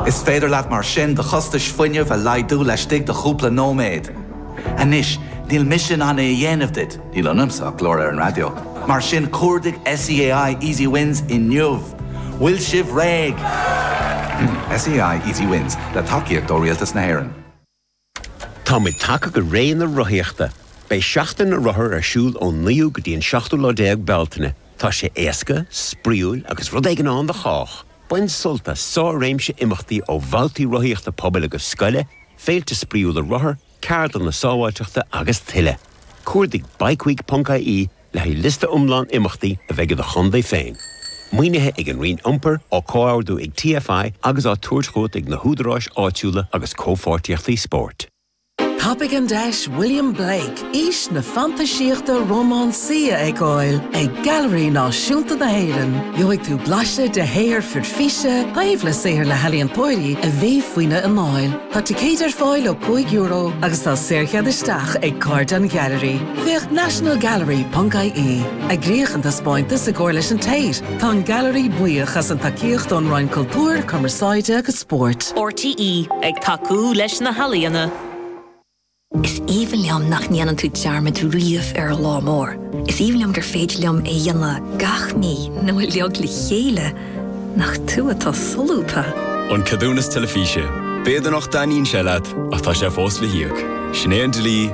Is féidir leat mar sin do chostais fuinnimh a laghdú laistigh de chúpla nóiméad. Anois, níl mise in ann é a dhéanamh duit, níl ionamsa ach glór ar an raidió, mar sin cuardaigh SEAI Easy Wins inniu! Bhfuil sibh réidh? SEAI Easy Wins, le tacaíocht ó Rialtas na hÉireann. Táimid tagtha go ré na rothaíochta. Beidh Seachtain na Rothar ar siúl ón 9ú go dtí an 7ú déag Bealtaine. Tá sé éasca, spraíúil agus rud éigin ann do chách! Bain sult as sár-réimse imeachtaí ó bhabhtaí rothaíochta pobail agus scoile, féilte spraíúla rothar, ceardlanna sábháilteachta agus tuilleadh. Cuardaigh bikeweek.ie Le haghaidh liosta iomlán imeachtaí a bheidh i do chontae féin, maoinithe ag an Roinn Iompair, á comhordú ag TFI agus á tabhairt chugat ag na húdaráis áitiúla agus Comhpháirtíochtaí Spóirt. Tapaigh an deis William Blake, Aois na Fantaisíochta Rómánsaí a fheiceáil ag Gailearaí Náisiúnta na hÉireann. Gheobhaidh tú blaiseadh de shaothar fir físe taobh le saothar na n-ealaíontóirí a bhí faoina anáil. Tá ticéid ar fáil ó €5 agus tá saorchead isteach ag Cairde an Ghailearaí. Féach nationalgallery.ie Eagraíodh an taispeántas i gcomhar leis an Tate, tá an Gailearaí buíoch as an tacaíocht ón Roinn Cultúir, Cumarsáide agus Spóirt. RTÉ ag tacú leis na healaíona. Is aoibhinn liom nach ndéanann tú dearmad riamh ar an lá mór. Is aoibhinn liom gur féidir liom é dhéanamh gach mí nó uilig le chéile nach tú atá solúbtha. An ceadúnas teilifíse. B'fhéidir nach dtaitníonn sé leat ach tá sé fós le híoc. Sin é an dlí.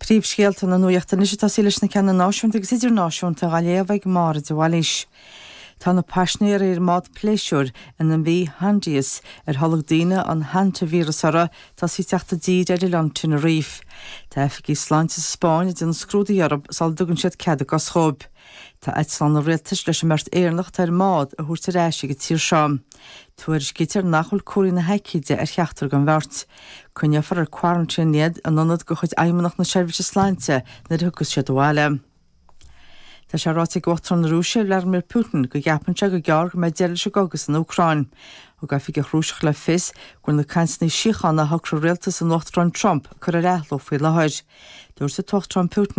Príomhscéalta na nuachta anois agus tosóidh muid leis na cinn náisiúnta agus idirnáisiúnta á léamh ag Máire de Bhailís. Tá na paisinéaraigh ar an mbád pléisiúir an MV Hondius, ar tholg daoine an hantaivíreas uirthi, tosaithe ag teacht i dtír ar oileán Tenerife. Tá oifigigh sláinte sa Spáinn ag déanamh scrúduithe orthu sula dtugann siad cead a gcos dhóibh. Tá eitleán an rialtais leis an mbeirt Éireannach atá ar an mbád a thabhairt ar ais go dtí an tír seo. Tuairiscítear nach bhfuil comharthaí na haicíde ar cheachtar den bheirt. Coinneofar ar quarantine iad in ionad de chuid Fheidhmeannacht na Seirbhíse Sláinte nuair a thiocfas siad abhaile. Tá sé ráite ag Uachtarán na Rúise, Vladimir Putin, go gceapann sé gur gearr go mbeidh deireadh leis an gcogadh san Úcráin. Thug oifigeach Rúiseach le fios go bhfuil na cainteanna síochána a shocraigh rialtas an Uachtaráin Trump curtha ar athló faoi láthair. Dúirt an tUachtarán Putin.